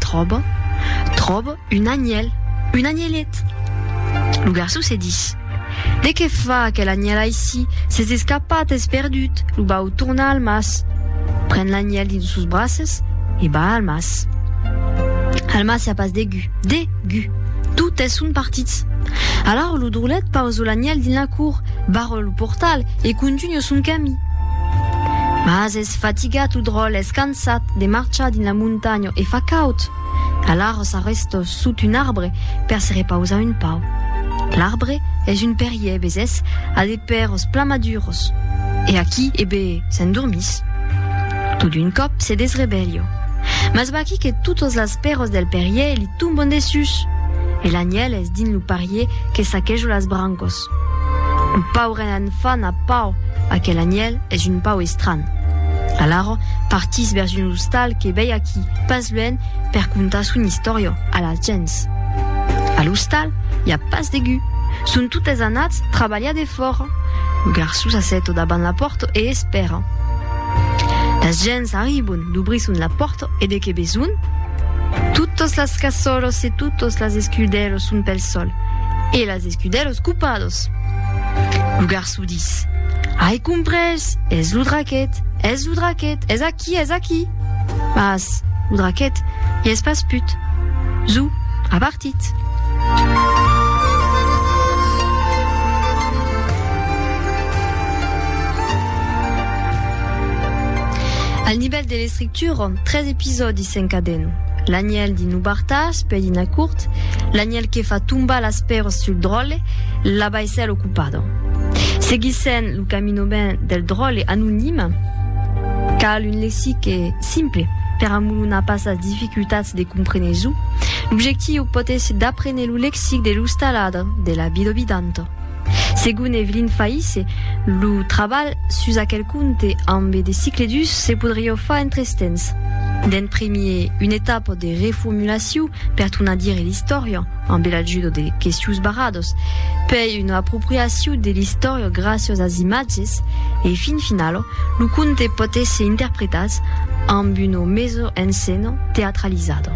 Tròba, tròba un anhèl, un anhelet. Lo garçon se dis, De qué fa aquel anhèl aicí? S'es escapat, es perdut. Lo vau tornar al mas. Pren l'anhèl dins sos braces e va al mas. Al mas i a pas de gu, de gu. Totes son partits. Alara lo drolet pausa l'anhèl dins la cour, barra lo portal e contunha son camí. Mas es fatigat lo dròl, es cansat. Sat de marchar dins la montanha e fa caud. Alara s'arresta sot un arbre per se repausar un pauc. L'arbre es un perrier, vesés, a de pèrs plan maduros. E aquí, e be, s'endormís. Tot d'un còp se desrevelha. Mas vaquí que totas las pèras del perrier li tomban dessús. E l'anièl es dins lo parrier que saqueja las brancas. Lo pauren enfant a pau, aquel anièl es un pau estranh. Alara partís vèrs un ostal que vei aquí pas luènh per contar son istòria a las gents. A l'ostal i a pas de gu, son totes anats trabalhar defòra. Lo garçon s'assèta davant la pòrta e espèra. Las gents arribon, dubrisson la pòrta e de que besonh? Totas las cassolas e totas las escudèlas son pel sol e las Escudelos cupados. Lo garço dis, Ai comprés, es lo draquet, es lo draquet, es aquí, es aquí. Mas lo draquet i es pas put. Zo a partit. Al nivèl de l'estrictura, Turon, tres episòdis s'encaden, l'anhèl de no bartar-se per dinar curt, l'anhèl que fa tombar las pèiras sul dròlle, la baissèla ocupada. Seguissèm lo caminament del dròlle anonime. Cal un lexique simple per amolonar pas las dificultats de compréner çò. L'objectiu pòt èsser d'aprene lo lexic de l'ostaladre, de la vida vidanta. Segon Evelyn Faïsse, lo trabalh sus aquel conte ambe de cicle dus se podrió far en tres temps. D'en primier, una etapa de reformulaciu per tornar dire l'istòria, ambe l'ajudo de questius barrados, pei una apropriaciu de l'istòria graciós as imatges e, fin finalo, lo conte pòt èsser interpretat amb una meso en scèna teatralizada.